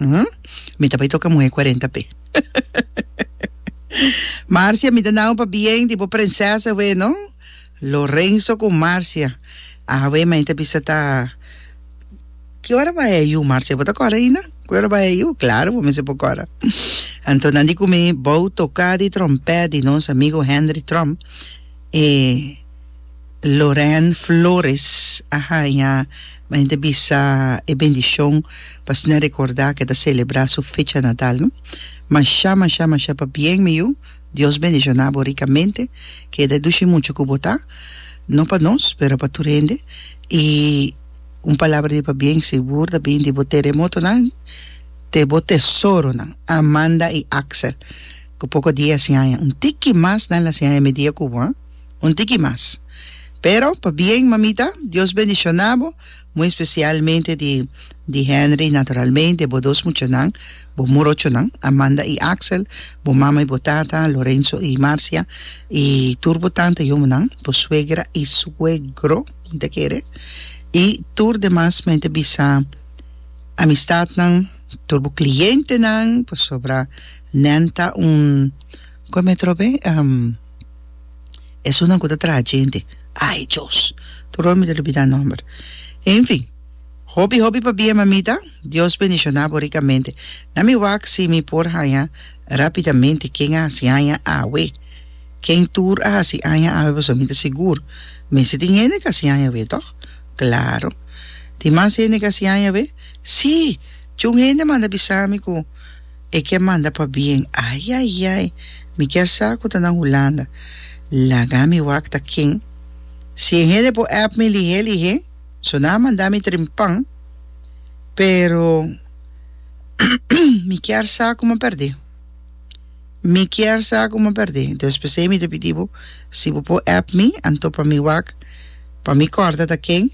Umm. Mi ta bai toca muhe cuarenta pe. Marcia, mi ta nao pa bien di bo prenses awe no. Lorenzo cu Marcia, Awe mei ta bisa ta Ki ora bai a yu Marcia? Bo ta cora aina? Ki ora bai a yu? Claro bo mester por cora. Anto nan di cu mi, Bou toca di trompet di nos amigo Henry Trump e Loren Flores a haya Ma hende a bisa e bendishon pa asina rekordá ku e ta selebrá su fecha natal. Mashá, mashá, mashá pabien mi yu, Dios bendishoná bo rikamente, keda e dushi muchu ku bo ta, no pa nos, pero pa tur hende, i un palabra di pabien sigur ta bini di bo teremotonan te bo tesoronan, Amanda i Axel, ku poko dia a hasi aña, un tiki mas nan lo hasi aña e mediakubo, ha. Un tiki mas. Pero, pa bien, mamita, Dios bendiciona bo, muy especialmente di di Henry, naturalmente, bo dos muchanan, bo morochonan, Amanda y Axel, bo mama y bo tata, Lorenzo y Marcia, y tur bo tanta y omonan, bo suegra y suegro, un te kere, y tur demas men te bisa amistadnan, tur bo clientenan, pasobra nan ta un, con me trobe? Esunnan ku ta traha djente. Ai Dios! Tur ora mi ta lubidá nòmber. Enfin, hopi hopi pabia mamita, Dios bendishoná bo rikamente. Na mi wak si mi por haña rápidamente ken a hasi aña awe. Ken tur a hasi aña awe pasobra mi ta sigur mester tin hende ku a hasi aña awe, tòg? Klaro. Tin mas hende ku a hasi aña awe? Sí! Chi un hende a manda bisa mi ku, E ke manda pa bien ay ay ay mi kier sa ku ta nan Hulanda laga mi wak ta ken si e hende por app mi lihe lihe so nan a manda mi trimpan pero mi kier sa kuma perde mi kier sa kuma perde entonces pesey mi ta pidi bo si bo por app mi anto pa mi wak pa mi korda ta ken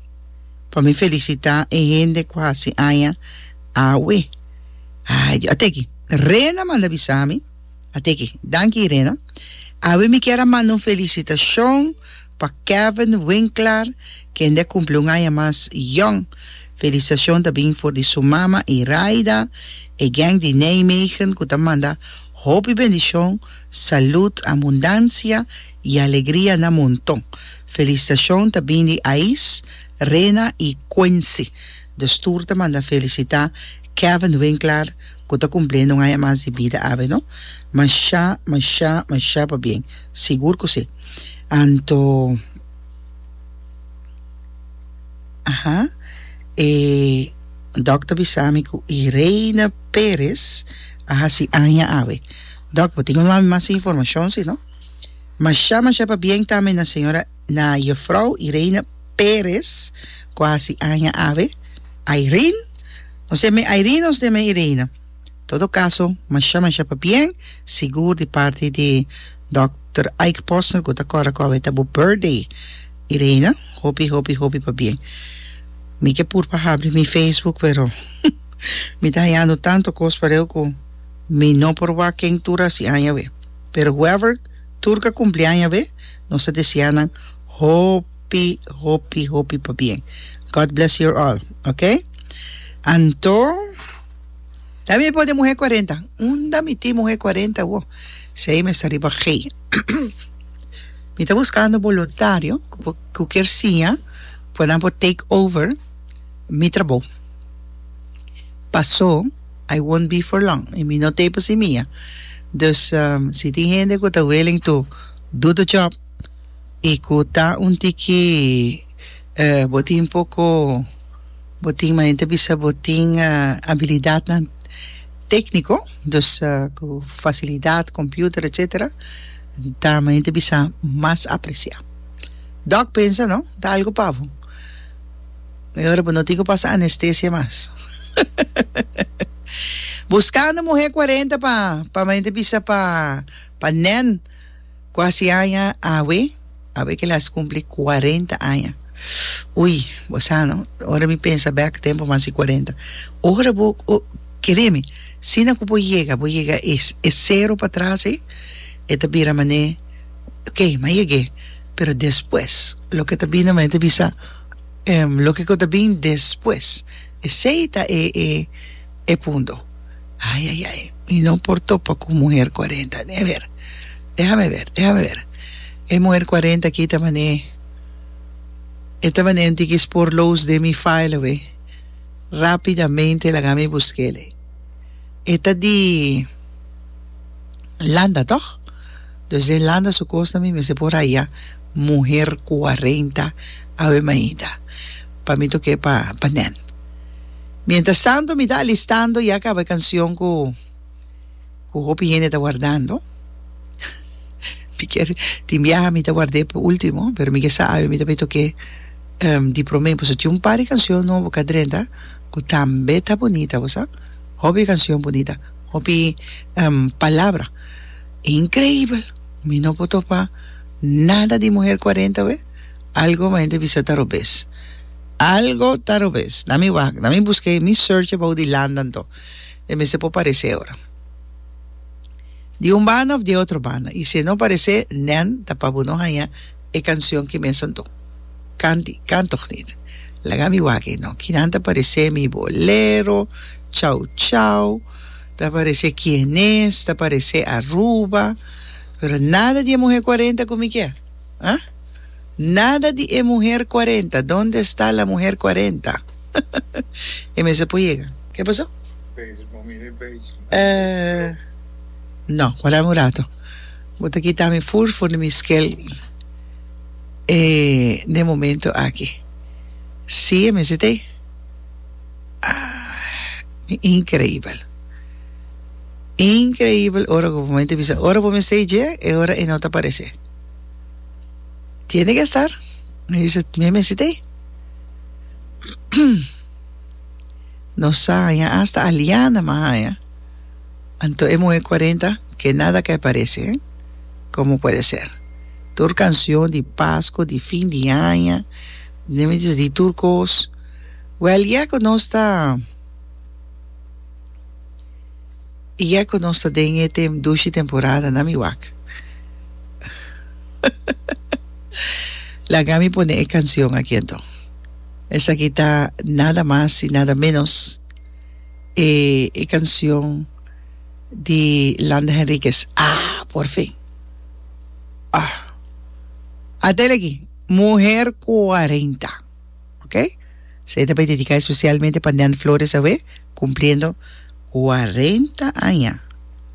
pa mi felisita e hende ku hasi aña awe. Ay di ate aki. Rena manda bisa mi. Ate aki. Danki Rena. Awe mi kier a manda un felicitacion pa Kevin Winklar kende a cumpli un aña mas jong. Felicitacion ta bin for di su mama Iraida, e geng di Nijmegen cu ta manda hopi bendicion, salud, abundancia y alegria na monton. Felicitacion ta bin di Ais, Rena y Quincy. De stoer ta manda felicita. Kevin Winkler cu ta cumple no haya mas di bida awe no. Masha masha masha pa bien. Sigur cu si. Anto aha e Doc ta bisa mi cu Irene Perez a haci aña awe. Doc bo tin un mami mas informacion si no. Masha masha pa bien tambe na Sra. Na Jufrouw Irene Perez cu haci aña awe, Irene, nos e mi Irene nos e mi Irene. Todo caso, masha masha pa bien, sigur di parti di Dokter Ike Posner cu ta corra cu awe ta bo birthday Irene, hopi hopi hopi pa bien. Mi ke pur pa habri mi Facebook pero mi ta hayando tanto cos pareu cu mi no por wak ken tur haci aña awe pero whoever Tur ka kumpli aña be, nos ta deseá nan hopi hopi hopi pa bien. God bless your all, ok. Anto, ta mi por den muhé kuarenta? Unda mi tin muhé kuarenta awo? Sei mester riba gei. Mi ta buskando boluntario ku por ku kier siña ku nan por take over mi trabou. Pasó. I won't be for long, y mi no t'ei pa si mia. Dus si tin hende cu ta willing to do the job y cu ta un tiki bo tin poco bo tin manera ta bisa bo tin habilidadnan tecnico dus cu facilidad, computer etc. Ta manera ta bisa mas aprecia. Doc pensa no ta algo pa bo. Mehor bo no tin cu pasa anestesia mas. Buscando muher cuarenta pa pa mente bisa pa pa nen cu haci aña awe awe que le haci cumpli cuarenta aña ui bo sa no ora mi pensa bek tempo mi haci cuarenta ora bo o cremi sina cu bo yega bo yega e e cero patras ey e ta bira mane okay mi a yegue pero despues loke ta bini mi mente bisa Em, loke ku ta bin despues, esei ta e e e punto. Ai ai ai, mi no por topa ku muher cuarenta, deha ber, dehame ber, dehame ber, e muher cuarenta aki ta man'e, e ta man'e un tiki sporloos den mi file awe, rapidamente laga mi busk'ele, e ta di Landa tòg? Dus den Landa su kos ta mi mester por haya. muher kuarenta Avemaida pa mi toke pa pa nen. Mientras tanto mi ta alistando ya kaba e kancion ku ku hopi hende ta wardando. Mi kier tin biaha mi ta ward'e pa ultimo pero mi ke sa awe mi ta bay toke di prome pasobra tin un par di kancion nobo ka drenta ku tambe ta bunita bo sa hopi kancion bunita hopi palabra increibel mi no por topa. Nada di muher cuarenta we? Algo mi hende bisa ta robes. Algo ta robes. Na mi wak, na mi busque, mi search abou di Landa anto. E mester por parece ora. Di un banda of di e otro banda. Y si e no parece, nen ta pa bo no haya e cancion ki mes anto. Canti, can toch niet. Laga mi wak ey no. Kinan ta parece mi bolero, chau chau, ta parece Quienes, ta parece Aruba. Pero nada di e muher cuarenta cu mi kier, ah? Nada di e muher cuarenta, donde esta la muher cuarenta? E mester por yega. Ke paso? Eh, no, guardami un rato. Bo ta kita mi fur for di mi skel eh, n'e momento aki. Si, e mester t'e. Ah, increibel. Increibel ora cu bo mester bisa ora bo mester dje e ora e no ta parece tiene que estar mi bisa mi mester ta ey no sa haya hasta Aliana mi a haya anto e muhe cuarenta que nada ke parece he como puede ser tur cancion di Pasco di fin di aña mi mi bisa di tur cos well ya cu nos ta Iya cu nos ta den e tem dushi temporada na mi wak. Laga mi pone e cancion aki anto. Esaki ta nada mas y nada menos e e cancion di Landa Henriquez. Ah, por fin! Ah. Atel aki, muher cuarenta. Ok? Sei ta bay dedicá especialmente pa Nen Flores awe, cumpliendo cuarenta aña.